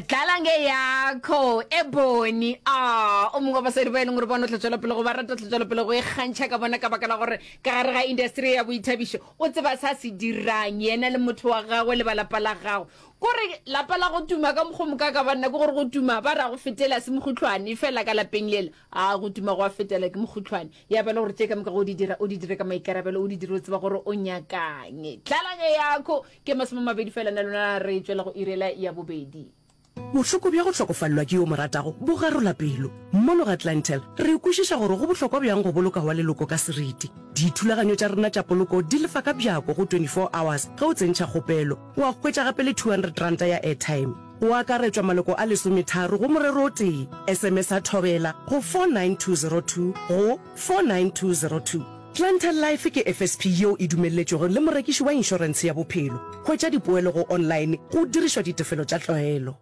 dlala nge yakho e boni a o mongwe wa basadi ba e leng gore bona o tla tswela pele go ba rata o tla tswela pele go e kgantšha ka bona ka baka la gore ka gare ga industry ya boithabišo o tseba sa se dirang yena le motho wa gagwe le ba lapa la gagwe kore lapa la go tuma ka mokgwa moka ka banna ke gore go tuma ba ra go fetela se mogotlhwane fela ka lapeng lela A go tuma go a fetela ke mokhutlhwane. Ya ba le gore tše ka moka go di dira, o di dire ka maikarabelo, o di dire o tseba gore o nyakang. Tlhalanyo yako ke masome a mabedi fela na lona re tšwela go irela ya bobedi. Bohloko bja go hlokofalelwa ke yo o mo ratago bo garola pelo. Mono ga Clientele, re kwešiša gore go bohlokwa bjang go boloka wa leloko ka seriti. Dithulaganyo tša rena tša poloko di lefa ka bjako go 24 hours ge o tsentšha kgopelo. O a hwetša gape le 200 ranta ya airtime. go akaretšwa maloko a lesometharo go morero o tee, SMS-a Thobela go 49202 go 49202. Clientele Life ke FSP yeo e dumelletšwego le morekiši wa inšorense ya bophelo. Hwetša dipoelo go online go dirišwa ditefelo tša tlwaelo.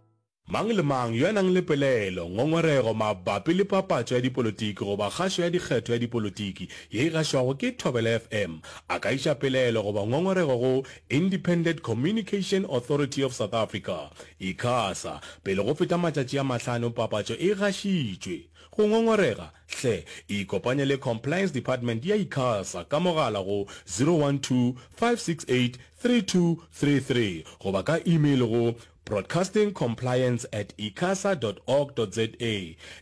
Mang le mang yo a nang le pelaelo, ngongorego mabapi le papatšo ya dipolotiki goba kgašo ya dikgetho ya dipolotiki ye e gašwago ke Thobela FM a ka iša pelaelo goba ngongorego go Independent Communication Authority of South Africa, Icasa, pele go feta matšatši a mahlano papatšo e gašitšwe. Go ngongorega? Hle ikopanye le Compliance Department ya Icasa ka mogala go 012 568 3233 goba ka email go. Broadcasting Compliance at icasa dot org dot za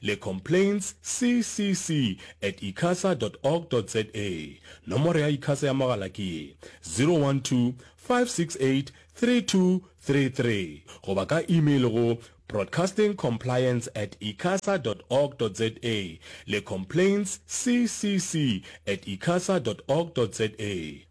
le Complaints CCC at icasa dot org dot za. Nomoro ya Icasa ya mogala ke ye, 012-568-3233 goba ka email go Broadcasting Compliance at icasa dot org dot za le Complaints CCC at icasa dot org dot za.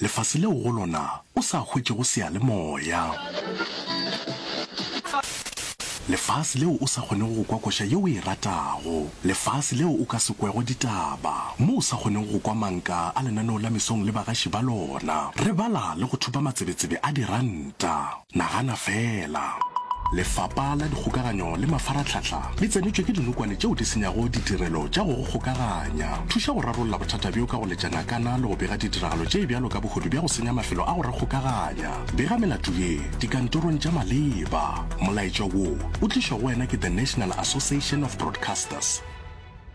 Lefase leo go lona o sa hwetšego seyalemoya. Lefase leo o sa kgonego go kwa koša ye o e ratago. Lefase leo o ka se kwego ditaba, mo o sa kgonego go kwa manka a lenaneo la mesong le bagaši ba lona. Re bala le go thupa matsebetsebe a diranta. Nagana feela! Lefapa la Dikgokaganyo le Mafaratlhatlha le tsenetšwe ke dinokwane tšeo di senyago ditirelo tša go go kgokaganya. Thuša go rarolla bothata bjo ka go letša ngakana le go bega ditiragalo tše bjalo ka bohodu bja go senya mafelo a go re kgokaganya. Bega melato ye dikantorong tša maleba. Molaetša wo o tlišwa go wena ke The National Association of Broadcasters.